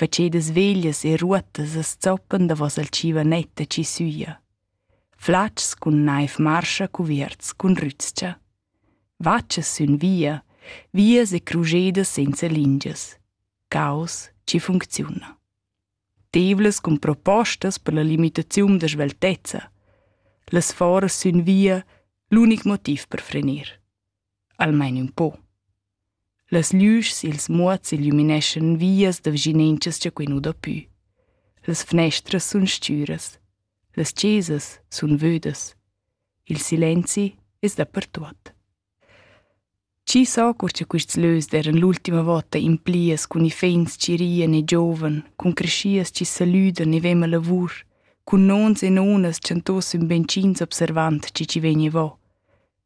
facedas veglias e ruottas as zoppan davos al tschivonett da chi süja. Flatgs cun naiv marscha cuvierts cun rüzcha. Vatschas sün via, vias e crujedas senza lingias. Caos chi funcziuna. Tevlas cun propostas per la limitaziun da sveltezza. Las foras sün via, l'unic motiv per frenir. Almain ün po. Las lüschs i'ls muots illumineschan vias da vischinanchas cha quai nu dà pü. Las fnestras sun stüras. Las chesas sun vödas. Il silenzi es dapertuot. Chi sa cur cha quists lös d'eiran l'ultima vota implias cun iffaints chi rian e giovan, cun creschias chi salüdan e ven la lavur, cun nons e nonas chantos ün beinch'ins observand chi chi vegniva.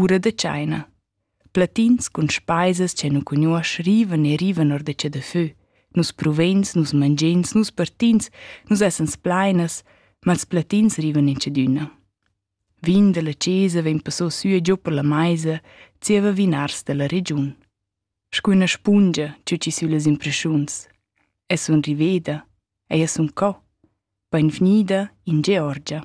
Ura da tscheina. Platins cun speisas che nu cugnuosch rivan e rivan or da che da fö. Nus pruveins, nus mangeins, nus partins, nus essan splainas, ma ils platins rivan in tschedüna. Vin dalla chesa vegn passò sü e giò per la maisa, zieva vinars dalla regiun. Scu üna spungia tü chi süllas impreschuns. Es un riveda, ei es un co. Bainvgnida in Georgia.